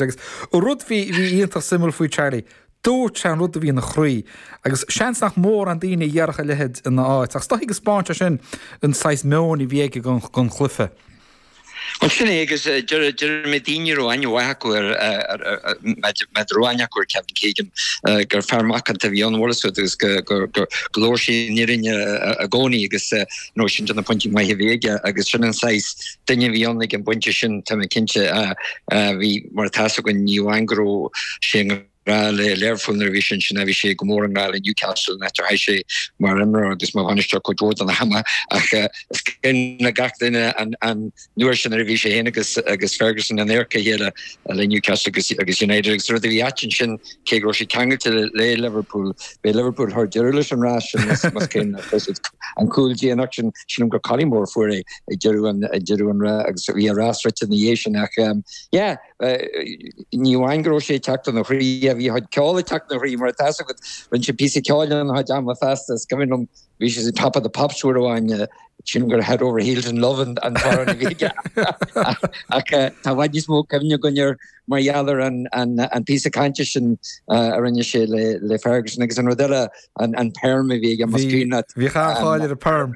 Agus rud bhí iontach suimiúil faoi Charlie, dúirt sé an rud a bhí ina chroí agus seans nach mórán daoine a dhéarfadh a leithéid ina áit. Ach is dóichí go dtaispeánann sin an saghas meoin a bhí aige don chluiche. Bhuel sin é agus d'éist mé le daoine a raibh aithne mhaith acu air má raibh aithne acu ar Kevin Keegan gur fear macánta a bhí ann amhail is rud agus go labhair sé an fhírinne i gcónaí agus nó sin de na pointí maith a bhí aige agus sin an saghas duine a bhí ann ag an bpointe sin tá mé cinnte bhí mar atá a fhios againn ní amháin go raibh sé i ngrá le Liverpool nuair a bhí sé ansin ach bhí sé go mór i ngrá le Newcastle an áit ar chaith sé mar imreoir agus mar bhainisteoir cuid mhór den am ach is cuimhin le gach duine an uair sin nuair a bhí sé fhéin agus Ferguson in adharca a chéile le Newcastle agus United agus rud a bhí ait ansin cé go raibh sé ceangailte le Liverpool b'é Liverpool a chuir deireadh leis an rith sin más cuimhin leat, fuair siad an cúl déanach sin. Sílim gur Collymore a fuair é ag deireadh an rith agus bhí an rath scriosta ina dhiaidh sin ach yeah ní amháin go raibh sé ag teacht ina chroí a bhí a chuid ceoil ag teacht ina chroí mar atá a fhios agat rinne sé píosa ceoil ann a chuid ama feasta is cuimhin liom Bhí sé ar Top of the Pops uair amháin, sílim gur Head Over Heels in Love an t-amhrán a bhí aige. Ach tá i bhfad níos mó cuimhne againn air mar gheall ar an píosa cainte sin a rinne sé le Ferguson agus an rud eile, an perm a bhí aige, más cuimhin leat. Bhí cáil ar an perm.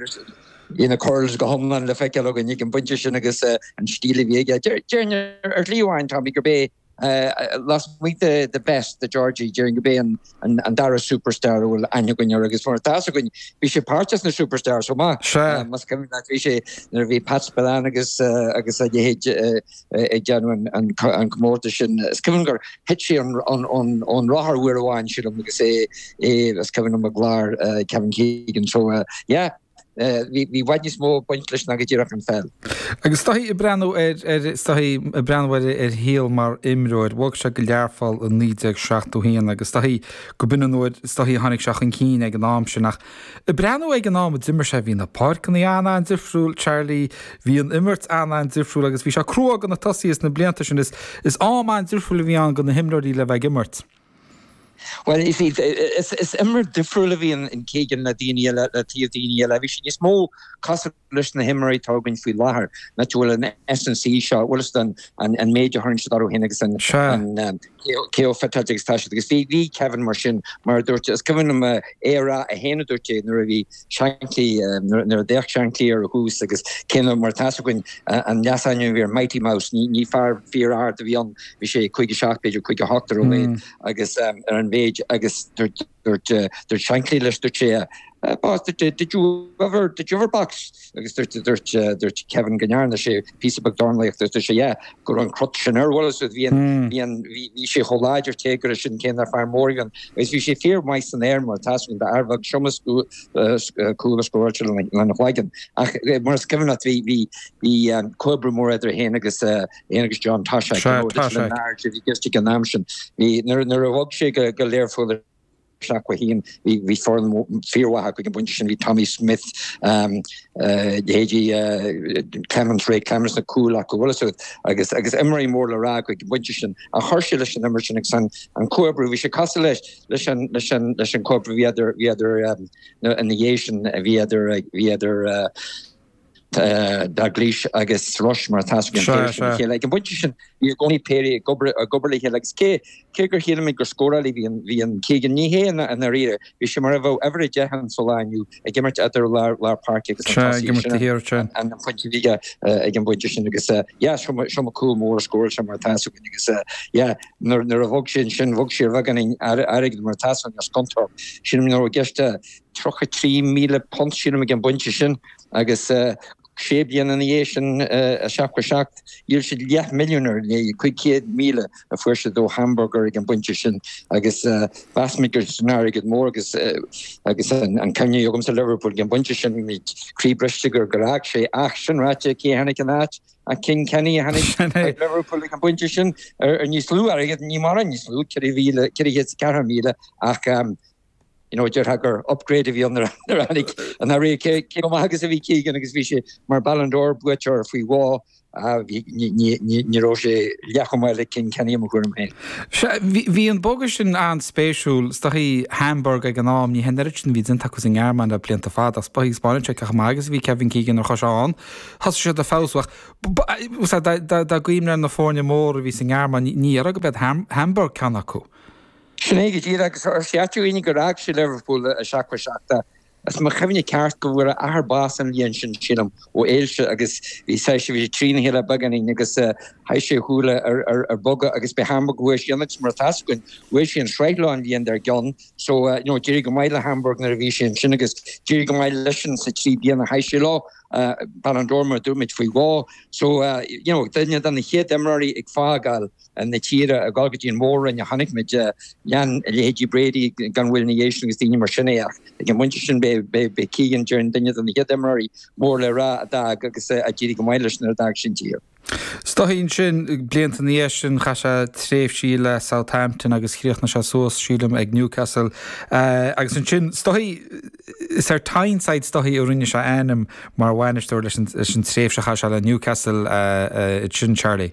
Bhí na curls go hiomlán le feiceáil againn ag an bpointe sin agus an stíl a bhí aige. Déarfainn ar shlí amháin, is dócha, gurb é Lasmuigh de Best, de Georgie, déarfainn gurb é an dara superstar a bhfuil aithne againn air agus mar atá fhios againn, bhí sé páirteach sna Superstars chomh maith. Sea. Más cuimhin leat bhí sé nuair a bhí Pat Spillane agus agus a leithéid ag déanamh an an comórtas sin. Is cuimhin gur thit sé ón rothar uair amháin sílim agus é é is cuimhin liom i gclár Kevin Keegan so yeah. Bhí i bhfad níos mó ag baint leis ná go díreach an pheil. Agus is dóichí ag breathnú ar is dóichí ag breathnú ar a shaol mar imreoir. Bhog sé go Learpholl i 1971 agus is dóichí go b'in an uair is dóichí a tháinig sé chun cinn ag an am sin. Ach ag breathnú ag an am a d'imir sé bhí na páirceanna an-an-difriúil, Charlie, bhí an imirt an-an-difriúil agus bhí sé crua do na tosaithe sna blianta sin is is am an-difriúil a bhí ann do na himreoirí le bheith ag imirt. Bhuel, is is imreoir difriúil a bhí in Keegan le daoine eile, le taobh daoine eile. Bhí sé níos mó cosúil leis na himreoirí atá againn faoi láthair an áit a bhfuil an S&C seo, bhfuil a fhios agat an méid a thugann siad dóibh féin agus an an cé chomh fit agus atá siad agus bhí bhí Kevin mar sin mar a dúirt is cuimhin liom é a rá é féin a dúirt é nuair a bhí Shankly, nuair a d'fhéach Shankly air ar dtús agus cé nár mar atá a fhios againn, an leasainm a bhí air Mighty Mouse, ní fear fíor-ard a bhí ann, bhí sé 5-7 b'fhéidir, 5-8 ar a laghad, agus ar an mhéid agus dúirt Shankly leis, dúirt sé, Boss, did you ever, did you ever box? agus dúirt Kevin go ndearna sé, píosa beag dornálaíochta is deise é go raibh an crot sin air. Bhuel, is bhí an, bhí an, bhí, bhí sé chomh láidir téagartha sin cé nach fear mór a bhí ann agus bhí sé fíormhaith san aer mar atá 's againn d'fhear beag is iomaí cúl a scóráil sé lena chloigeann. Ach mar is cuimhin leat bhí, bhí, bhí comhoibriú mór idir é fhéin agus, fhéin agus John Toshack, you know, Little and Large a bhí orthu an am sin. Bhí, nuair, nuair a bhog sé go, go Learpholl ar. seacht a haon, bhí foireann fíormhaith acu ag an bpointe sin, bhí Tommy Smith, leithéidí Clemence, Ray Clemence, sna cúil acu, an bhfuil 's agat agus agus imreoirí mór le rá acu ag an bpointe sin. Ach chuir sé leis an imirt sin agus an comhoibriú, bhí sé cosúil leis leis an leis an leis an comhoibriú a bhí idir bhí idir ina ina dhiaidh sin a bhí idir bhí idir Dalglish agus Rush mar atá 's againn an péire sin le chéile. Ag an bpointe sin bhí i gcónaí péirí ag obair le chéile agus cé gur sílimid gur scórálaí a bhí in Keegan, ní hé i ndáiríre, bhí sé mar a bheadh uimhir a deich ann sa lá inniu ag imirt eadar lár páirce agus an tosaíocht sin an phointe a bhí aige ag an bpointe sin agus yeah is iomaí cúl mór a scóráil sé mar atá 's againn agus yeah nuair a bhog sé ansin bhog sé ar bheagán airgid mar atá 's againn as Scunthorpe. Sílim go raibh i gceist £33,000 sílim ag an bpointe sin agus sé bliana ina dhiaidh sin, 7-7, dhíol siad leath milliún ar an léi, 500,000 a fuair siad ó Hamburg ag an bpointe sin agus mheas muid gur airgead mór agus an ceangal agamsa le Liverpool ag an bpointe sin, bhí muid croí briste gur fhág sé ach, sin ráite, cé a tháinig ina áit ach King Kenny a tháinig ag Liverpool ag an bpointe sin ar níos lú airgid, ní mórán níos lú, 4,000, 400,000 ach you know, déarfá gur upgrade a bhí ann nuair a tháinig an Rí cé chomh maith agus a bhí Keegan agus bhí sé mar Ballon d'Or buaiteoir faoi dhó ní raibh sé leathchomh maith le King Kenny i mo thuairim féin. Sea, bhí an bogadh sin an-spéisiúil. Is dóichí Hamburg ag an am, ní hé an oiread sin a bhí déanta acu sa nGearmáin le blianta fada ach taispeánann sé cé chomh maith agus a bhí Kevin Keegan nuair a chuaigh sé ann. Thosaigh siad ag feabhsú ach. Sea, dá gcuimhneofá ar na foirne móra a bhí sa nGearmáin, ní déarfá go mbeadh Hamburg ceann acu. Sin é go díreach, agus is é atá ann ná gur fhág sé Liverpool i seachtó seacht, más mo chuimhne ceart, go bhfuair a athair bás an bhliain sin, sílim, ó ailse agus bhí saghas, bhí sé trína chéile beagáinín agus chaith sé a shúile ar bogadh agus ba Hamburg a chuaigh sé ann agus mar atá 's againn, bhuaigh sé an sraith leo an bhliain dár gcionn so, you know, d'éirigh go maith le Hamburg nuair a bhí sé ansin agus d'éirigh go maith leisean sa trí bliana a chaith sé leo, Ballon d'Or mar a dúirt muid faoi dhó so, you know, duine de na chéad imreoirí ag fágáil. na tíre a dhul go dtí an Mhór-Roinn a chonaic muid. Lean leithéidí Brady gan mhoill ina dhiaidh sin agus daoine mar sin é ach ag an bpointe sin b'é Keegan i ndáiríre duine de na chéad imreoirí mór le rá a d'fhág agus a d'éirigh go maith leis nuair a d'fhág sé an tír. Is dóichí ansin blianta ina dhiaidh sin chaith sé tréimhsí le Southampton agus chríochnaigh sé suas, sílim, ag Newcastle agus ansin is dóichí is ar Tyneside is dóichí a rinne sé a ainm mar bhainisteoir leis an tréimhse a chaith sé le Newcastle, sin Charlie?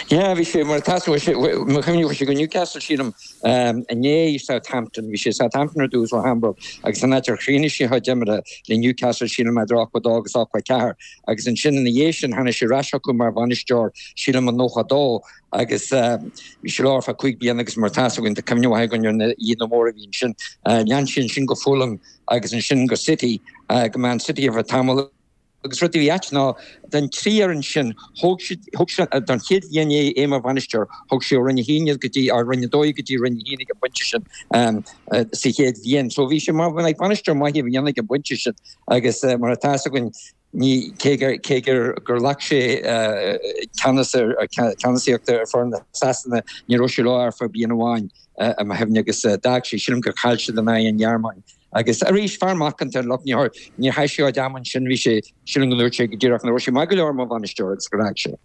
Yeah bhí sé mar atá fhios agat i mo chuimhne chuaigh sé go Newcastle sílim nó Southampton bhí sé i Southampton ar dtús ó Hamburg agus sin an áit ar chríochnaigh sé a chuid imeartha le Newcastle sílim idir 82 agus 84 agus ansin ina dhiaidh sin tháinig sé ar ais chucu mar bhainisteoir sílim i 92 agus bhí sé leo ar feadh 5 bliana agus mar atá fhios agat go bhfuil cuimhne mhaith againn ar na hoícheanta móra a bhí ansin lean sé ansin go Fulham agus ansin go City go Man City ar feadh tamall Agus rud a bhí ait ná, den trí fhoireann sin, thóg siad, thug sé, don chéad bhliain é, é mar bhainisteoir, thug sé ó Roinn 1 iad go dtí, or Roinn 2 iad go dtí Roinn 1 ag an bpointe sin ehm sa chéad bhliain. So bhí sé mar, bhuel like bainisteoir maith a bhí ann ag an bpointe sin agus mar atá fhios againn ní, cé gur, cé gur, gur ghlac sé eh ceannas ar, ceannasaíocht ar foireann na Sasana ní raibh sé leo ach ar feadh bliain amháin i mo chuimhne agus d'fhág sé, sílim gur chaill siad in aghaidh an Ghearmáin. Agus arís, fear macánta an lucht nirt. Níor chaith sé oiread am ansin. Bhí sé, sílim go ndúirt sé go díreach, nach raibh sé maith go leor mar bhainisteoir agus gur fhág sé.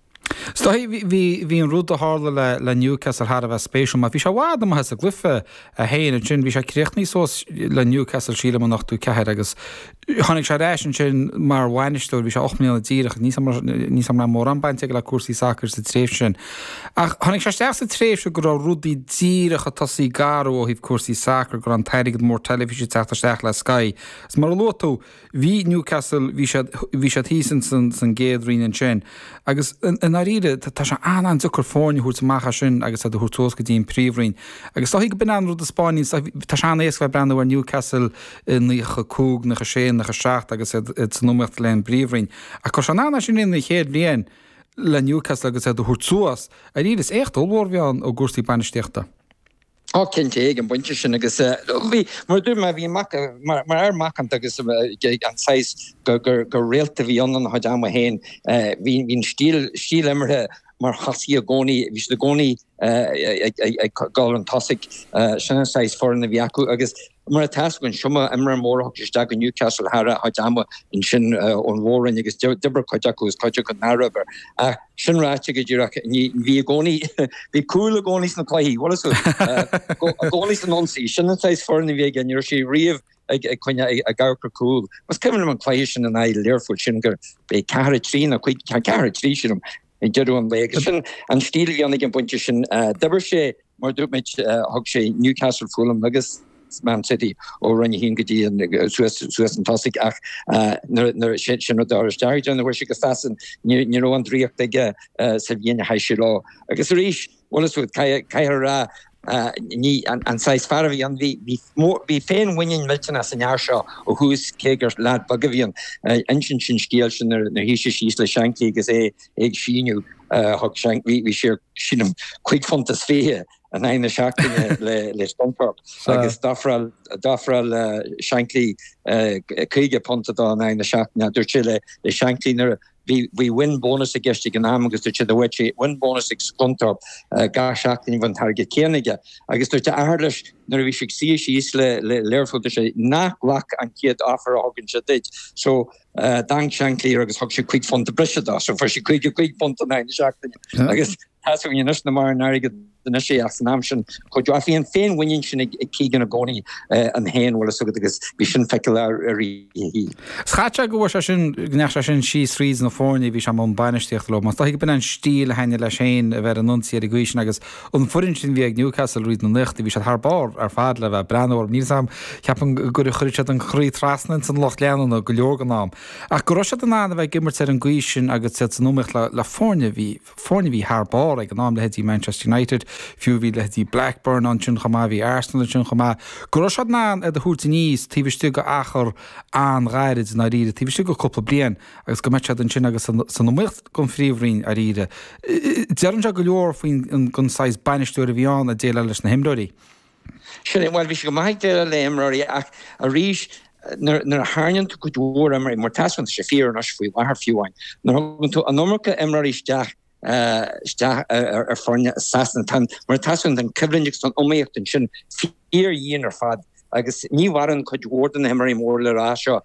Is dóichí bhí, bhí an rud a tharla le, le Newcastle thar a bheith spéisiúil mar bhí sé i bhfad amuigh as an gcluiche é féin ansin. Bhí sé críochnaithe suas le Newcastle sílim in ochtó ceathair agus tháinig sé ar ais ansin mar bhainisteoir, bhí sé ocht mbliana díreach, ní, ní raibh mórán baint aige le cúrsaí sacair sa tréimhse sin. Ach tháinig sé isteach sa tréimhse go raibh rudaí díreach ag tosaí ag athrú ó thaobh cúrsaí sacair go raibh an t-airgead mór teilifíse ag teacht isteach le Sky. Is mar a luaigh tú, bhí Newcastle, bhí siad, bhí siad thíos in san, san gcéad roinn ansin. Agus i ndáiríre, tá, tá sé an, an-deacair foireann a thabhairt amach as sin agus iad a thabhairt suas go dtí an príomhroinn. Agus is dóigh go b'in an rud a spáineann, tá, tá sé an-éasca bheith ag breathnú ar Newcastle i naocha a cúig, naocha sé, naocha seacht agus iad, iad san iomaíocht le an bpríomhroinn. Ach go raibh sé in ann, ansin in an chéad bhliain, le Newcastle agus iad a thabhairt suas. Dáiríre is éacht ollmhór a bhí ann i gcúrsaí bainistíochta. Ó cinnte eh ag an bpointe sin agus bhí, mar a dúirt mé, bhí mac, mar fhear macánta agus an saghas gur réalta a bhí ann ina chuid ama féin. Bhí an stíl, stíl imeartha mar chuaigh siad i gcónaí, bhí siad i gcónaí ag dul chun tosaigh. Sin an saghas foireann a bhí acu agus Mar atá fhios againn is iomaí imreoir mór a thug sé isteach go Newcastle thar a chuid ama ansin ón Mhór-Roinn agus d'oibir cuid acu agus cuid acu nár oibir. Ach sin ráite go díreach, bhí i gcónaí, bhí cúl i gcónaí sna cluichí, bhuel is í, i gcónaí san ionsaí, sin an saghas foirne a bhí aige, ní raibh sé riamh ag coinne ag amharc cúl. Is cuimhin liom an cluiche sin in aghaidh Learphoill sílim gurbh é ceathair a trí nó cuig, ceathair a trí sílim, ag deireadh an lae. Agus sin an stíl a tháinig ag an bpointe sin. D'oibir sé, mar a dúirt muid, thug sé Newcastle, Fulham agus Man City ó Roinn 1 go dtí an, suas an tosaigh ach nuair a sin rud a chur isteach nuair a chuaigh sé go Sasain ní raibh an draíocht aige sa bhliain a chaith sé leo. Agus arís, Bhuel is rud caithfear a rá ní an saghas fear a bhí ann. Bhí féinmhuinín millteanach san fhear seo ó thús cé gur lad beag a bhí ann. Insíonn sé an scéal sin nuair a shuigh sé síos le Shankly agus é ag síniú. Thug Shankly, bhí sé ar, sílim, cúig phunt is fiche in aghaidh na seachtaine le Scunthorpe agus d'ofráil Shankly caoga punt dó in aghaidh na seachtaine. Dúirt sé le Shankly Bhí win bónas i gceist ag an am agus dúirt sé go bhfaigheadh sé win bónas ag Scunthorpe gach seachtain a bhí an t-airgead céanna aige. Agus dúirt a athair leis nuair a bhí sé ag suí síos le Learphoill, dúirt sé, Ná glac an chéad offer a thugann sé duit. So, d'amharc Shankly air agus thug sé cúig phunt breise dó. So, fuair sé caoga cúig punt in aghaidh na seachtaine. Agus. Tá a fhios againn anois nach mórán airgid anois é ach san am sin chomh deo. Ach bhí an féinmhuinín sin ag Keegan i gcónaí ann féin bhfuil a fhios agat agus bhí sin feiceálach arís. Caithfidh sé go bhfuair sé sin go ndeachaigh sé sin síos thríd na foirne a bhí sé i mbun bainistíochta leo. Mar is dóichí go b'in an stíl a thaitnigh leis féin a bheith ar an ionsaí ar an gcaoi sin agus an fhoireann sin a bhí ag Newcastle thríd na nóchaidí bhí siad thar barr ar fad le bheith breathnú orthu. Níl fhios agam ceapaim gur chuir siad an croí trasna ins an lucht leanúna go leor den am ach go raibh siad in ann a bheith ag imirt ar an gcaoi sin agus iad san iomaíocht le foirne a bhí Foirne a bhí thar barr ag an am, leithéidí Manchester United, fiú. Bhí leithéidí Blackburn ansin chomh maith, bhí Arsenal ansin chomh maith. Go raibh siad in ann iad a thabhairt aníos taobh istigh de achar an-ghairid, i ndáiríre, taobh istigh de cúpla bliain agus go mbeadh siad ansin agus san iomaíocht don Phríomhroinn, i ndáiríre. Deireann sé go leor faoin saghas bainisteoir a bhí ann ag déileáil leis na himreoirí. Sin é, bhuel, bhí sé go maith ag déileáil le imreoirí ach arís nuair a tharraingíonn tú cuid mhór imreoirí, mar tá a fhios againn, tá sé fíor anois faoi láthair fiú amháin, nuair a thugann tú an iomarca imreoirí isteach, isteach ar foirne i Sasana, tá an, mar atá a fhios againn, tá an coimhlint agus tá an iomaíocht ansin fíordhian ar fad agus ní mhaireann cuid mhór de na himreoirí mór le rá seo.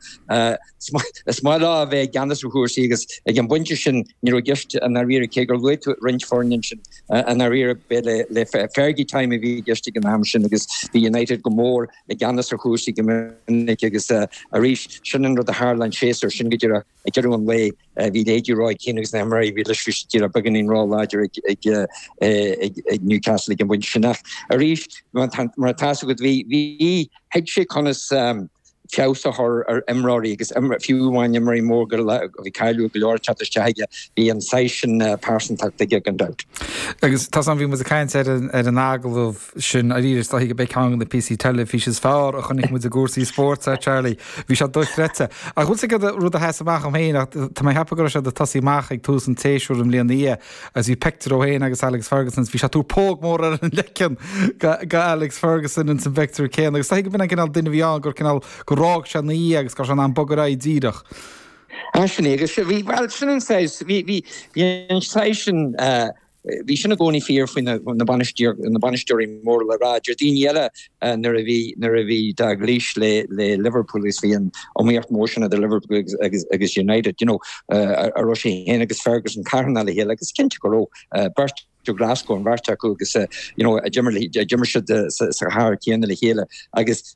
Is maith leo a bheith i gceannas ar chúrsaí agus ag an bpointe sin ní raibh i gceist i ndáiríre, cé gur luaigh tú roinnt foirne ansin i ndáiríre. Bhuel Fergie time a bhí i gceist ag an am sin agus bhí United go mór i gceannas ar chúrsaí go minic agus arís, sin an rud a tharla an séasúr sin go díreach ag deireadh an lae. Bhí leithéidí Roy Keane agus na himreoirí a bhí leis bhí siad beagáinín róláidir ag Newcastle ag an bpointe sin ach arís mar atá a fhios agat bhí thuig sé conas feabhas a chur ar imreoirí agus fiú amháin imreoirí móra a bhí cáiliúil go leor ag teacht isteach aige bhí an saghas sin pearsantacht aige gan dabht. Agus tá a fhios agam bhí muid ag caint ar an agallamh sin arís is dócha go mbeidh ceann de na píosaí teilifíse is fearr a chonaic muid i gcúrsaí spóirt a Charlie. Bhí sé dochreidte. Ach an bhfuil fhios agat an rud a sheas amach dom féin ach tá mé ag ceapadh go raibh sé ag tosaí amach ag tús an tséasúir an bhliain ina dhiaidh agus bhí pictiúr dó féin agus Alex Ferguson bhí sé ag tabhairt póg mór ar an leiceann do Alex Ferguson ins an bpictiúr céanna agus is dócha gurb é an cineál duine a bhí ann gur cineál gur fhág sé ina dhiaidh agus go raibh sé in ann bogadh ar aghaidh díreach. Sin é agus bhí bhí bhí an saghas sin Bhí sin i gcónaí fíor faoi na bainisteoirí mór le rá. Deir daoine eile nuair a bhí Dalglish le Liverpool agus bhí an iomaíocht mhór sin idir Liverpool agus United, you know, go raibh sé féin agus Ferguson cairdiúil le chéile agus cinnte go raibh. Beirt ó Glasgow an bheirt acu agus, you know, d'imir siad sa chathair chéanna le chéile agus,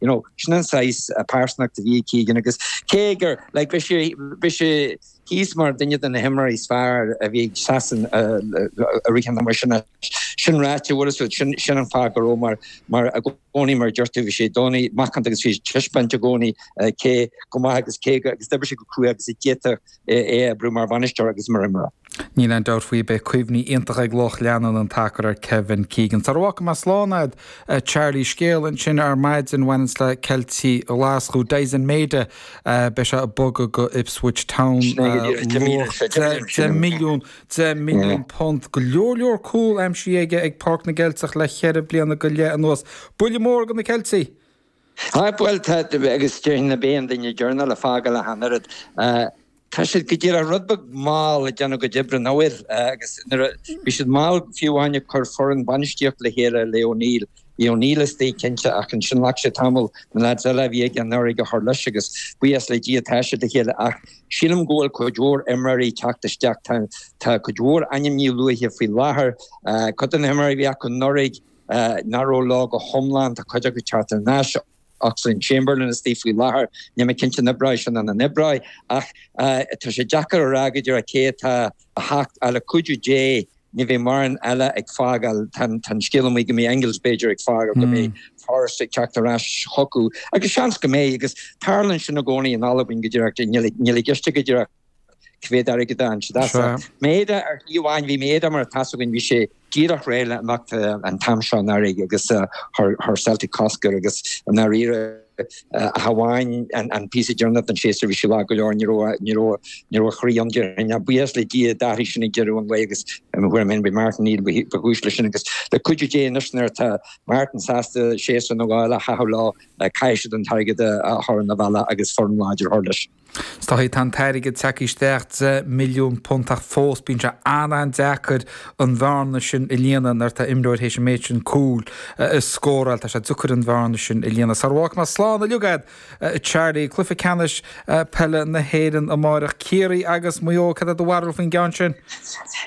You know, sin an saghas pearsanacht a bhí ag Keegan agus cé gur like, bhí sé, bhí sé thíos mar duine de na himreoirí is fearr a bhí ag Sasana riamh cheana mar sin. Sin ráite, bhfuil fhios agat, sin, sin an fáth go raibh mar, mar i gcónaí mar a deir tú, bhí sé i gcónaí macánta agus bhí sé ag taispeáint i gcónaí cé chomh maith agus cé go, agus d'oibrigh sé go cruaidh agus a d'fhéadfadh é a oibriú mar bhainisteoir agus mar imreoir. Níl aon dabht faoi, beidh cuimhní iontacha ag lucht leanúna an tsacair ar Kevin Keegan. Sula bhfágfaidh mé slán agat a Charlie scéal ansin ar maidin a bhaineanns le Ceiltigh Ghlaschú, Daizen Maida, beidh sé ag bogadh go Ipswich Town, luach deich milliún, deich milliún punt. Go leor leor cúl aimsithe aige ag Páirc na gCeilteach le cheithre bliana go leith anuas. Buille mór do na Ceiltigh! Tá, bhuel, tá, agus déarfainn nach b'é an duine deireanach le fágáil ach an oiread. Tá siad go díreach rud beag mall ag déanamh a gcuid oibre, nach bhfuil? Agus nuair a, bhí siad mall fiú amháin ag cur foireann bainistíocht le chéile le O'Neill. Bhí O'Neill istigh cinnte ach ansin ghlac sé tamall na lads eile a bhí aige anuraidh a chur leis agus buíochas le Dia tá siad le chéile ach sílim go bhfuil cuid mhór imreoirí ag teacht isteach, tá, tá cuid mhór ainmneacha luaithe faoi láthair. Cuid de na himreoirí a bhí acu anuraidh, Nach raibh leo go hiomlán tá cuid acu ag teacht ar ais? Oxlade Chamberlain istigh faoi láthair. Níl mé cinnte an oibreoidh sin nó nach n-oibreoidh ach tá sé deacair a rá go díreach caidé atá ach le cuidiú Dé ní bheidh mórán eile ag fágáil. Tá an scéal amuigh go mbeidh Engels b'fhéidir ag fágáil go mbeidh Forrest ag teacht ar ais chuige agus seans go mbeidh agus tarlaíonn sin i gcónaí in Albain go díreach, níl a fhios againn go díreach. Cá mbeidh an t-airgead ann. Sea. Sea. Maeda ar shlí amháin bhí Maeda mar atá fhios againn, bhí sé díreach réidh le imeacht an t-am seo anuraidh agus chuir Celtic cosc air agus i ndáiríre ach amháin an píosa deireanach den séasúr bhí sé lag go leor ní raibh ní raibh ní raibh a chroí ann déarfainn ach buíochas le Dia d'athraigh sin ag deireadh an lae agus mo thuairim fhéin gurbh é Martin O'Neill ba chúis leis sin agus le cuidiú Dé anois nuair atá Martin sásta séasúr eile a chaitheamh leo caithfidh siad an t-airgead a chur ina bhealach agus foireann láidir a chur leis. Scaití tá an t-airgead ag teacht isteach, £10 milliún, ach fós bíonn sé an-an-deacair an bhearna sin a líonadh nuair atá imreoir théis an méid sin cúl a scóráil. Tá sé deacair an bhearna sin a líonadh. Sara bhfágfaidh mé slán uilig agat a Charlie, cluiche ceannais peile na hÉireann amáireach, Ciarraí agus Maigh Eo, cad é do bharúil faoin gceann sin?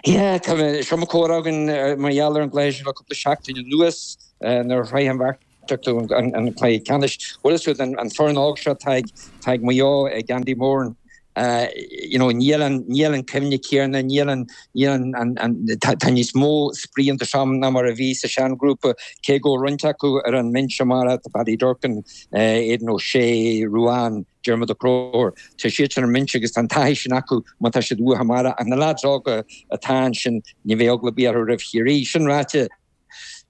Yeah, tá, bhí an-chomhrá againn mar gheall ar an gcluiche sin le cúpla seachtain anuas nuair a shroich an bheirt an cluiche ceannais uile siúd, an foireann óg seo atá ag Maigh Eo, ag Andy Moran, you know, níl an chuimhne chéanna, tá níos mó spraoi iontu seo ná mar a bhí sa seanghrúpa, cé go bhfuil roinnt acu ar an mbinse mar atá Paddy Durcan, Aidan O'Shea, Ruane, Diarmuid Ó Conchúir. Tá siad sin ar an mbinse agus tá an taithí sin acu má tá siad uatha mar tá na leaids óga atá ansin, ní bheidh eagla ar bith orthu roimh Chiarraí. Sin ráite,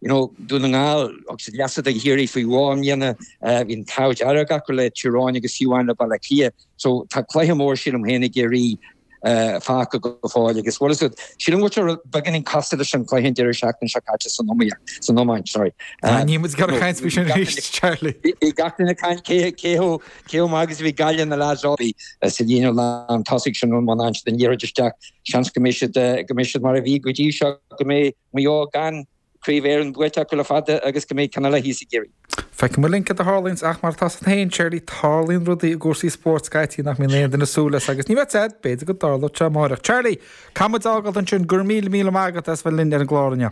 You know, Dún na nGall agus an leasa den Chiarraí faoi bhá a ndéanamh. Bhí an t-ádh dearg acu le Tír Eoghain agus a shuíomh le Baile Átha Cliath. So, tá cluiche mór sílim féin i gCiarraí fágtha go fóill agus bhfuil is rud, sílim go bhfuil sé beagáinín cosúil leis an gcluiche an deireadh seachtaine seo caite san iomaíocht, san iomáint, sorry. Tá, níl muid ag gabháil ag caint faoi sin arís, Charlie. Bhí gach duine ag caint cé, cé chomh, cé chomh maith agus a bhí Gaillimh na leaids a bhí sa líne lántosaigh sin an mbuntáiste den liathróid isteach. Seans go mbeidh siad, go mbeidh siad mar a bhí go dtí seo, go mbeidh. Maigh Eo gan Craobh Éireann buaite acu le fada agus go mbeidh cineál faitíos ag Ciarraí. Feicfidh muid linn cad a tharlaíonns ach mar atá a fhios againn féin Charlie tarlaíonn rudaí i gcúrsaí spóirt scaití nach mbíonn aon duine ag súil leis agus ní fheadar b'fhéidir go dtarlódh sé amáireach. Charlie, caithfidh muid a fhágáilt ansin, go raibh míle míle maith agat as bheith linn ar an gclár inniu.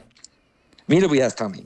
Míle buíochas Tommy.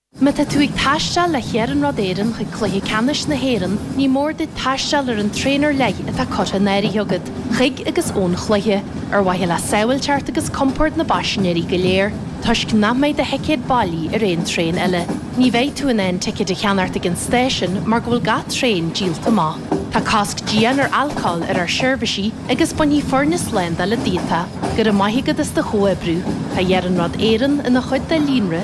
Má tá tú ag taisteal le hIarnród Éireann chuig Cluiche Ceannais na hÉireann, ní mór duit taisteal ar an traein ar leith atá curtha in áirithe agat chuig agus ón chluiche, ar mhaithe le sábháilteacht agus compord na bpaisinéirí go léir, toisc nach mbeidh do thicéad bailí ar aon traein eile. Ní bheidh tú in ann ticéid a cheannairt ag an stáisiún mar go bhfuil gach traein díolta amach. Tá cosc dian ar alcól ar ár seirbhísí agus bainfidh foirne slándála díot é. Go raibh maith agat as do chomhoibriú. Tá Iarnród Éireann ina chuid de líonra.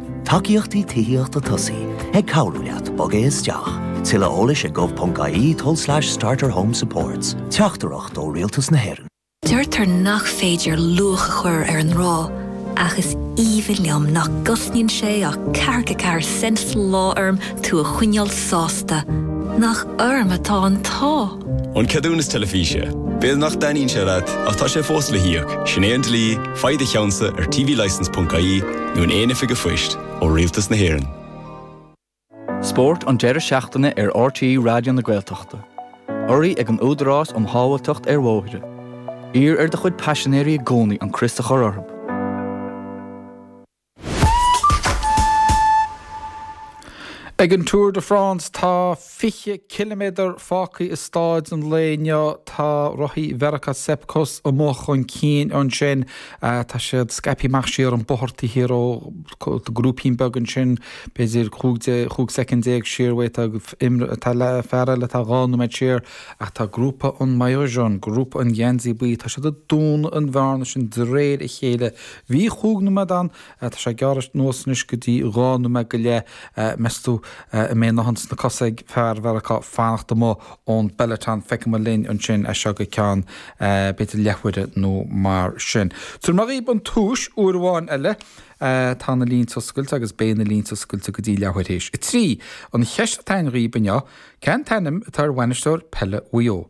Tacaíochtaí Tithíochta Tosaigh ag cabhrú leat bogadh isteach. Tuilleadh eolais ag gov.ie tulslais starterhomesupports. Teachtaireacht ó Rialtas na hÉireann. Deirtear nach féidir luach a chur ar an ngrá, ach is aoibhinn liom nach gcosnaíonn sé ach ceathracha ceathair cent sa lá orm tú a choinneáil sásta. Nach orm atá an t-ádh! An ceadúnas teilifíse. B'fhéidir nach dtaitníonn sé leat, ach tá sé fós le híoc, sin é an dlí, faigh do cheannsa ar tvlicence.ie nó in aon oifig phoist ó Rialtas na hÉireann. Spórt an deireadh seachtaine ar RTÉ Raidió na Gaeltachta. Urraithe ag an Údarás um Shábháilteacht ar Bhóithre. Iarr ar do chuid paisinéirí i gcónaí an crios a chur orthu. Ag an Tour de France tá 20 ciliméadar fágtha i stáid an lae inniu. Tá rothaí Mheiriceá Sepp Kuss amuigh chun cinn ansin. Tá siad scaipthe amach siar an bóthar taobh thiar dhó grúipín beag ansin, b'fhéidir 15 soicind siar uaidh tá fear eile atá dhá nóiméad siar. Ach tá grúpa an maillot jaune, grúpa an gheansaí buí, tá siad ag dúnadh an bhearna sin de réir a chéile. Bhí chúig nóiméad ann, tá sé ag gearradh anuas anois go dtí dhá nóiméad go leith, meas tú an mbeidh a dhóthain sna cosa ag fear Mheiriceá fanacht amuigh ón bpeloton, feicfimid linn ansin as seo go ceann b'fhéidir leathuaire nó mar sin. Tabharfaidh mé dhaoibh an tomhais uair amháin eile, tá na línte oscailte agus beidh na línte oscailte go dtí leathuair théis a trí. An cheist atá ann dhaoib inniu, cén t-ainm atá ar bhainisteoir peile Mhaigh Eo?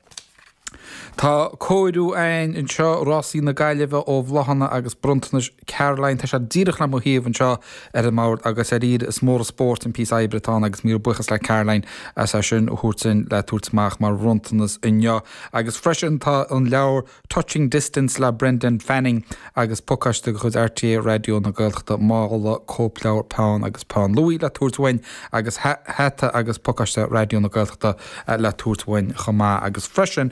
Tá cóiriú a'ainn anseo, Rásaí na Gaillimhe ó bhláthanna agus bronntanais Caroline. Tá sé díreach le mo thaobh anseo ar an mbord agus dháiríre is mór an spóirt an píosa oibre atá ann agus míle buíochas le Caroline as é sin a thabhairt dhúinn le tabhairt amach mar bhronntanas inniu. Agus freisin tá an leabhar. Touching Distance le Brendan Fanning agus pacáiste de chuid RTÉ Raidió na Gaeltachta, mála, cóipleabhar, peann agus peann luaidhe le tabhairt uainn agus hata agus pacáiste Raidió na Gaeltachta le tabhairt uainn chomh maith agus freisin,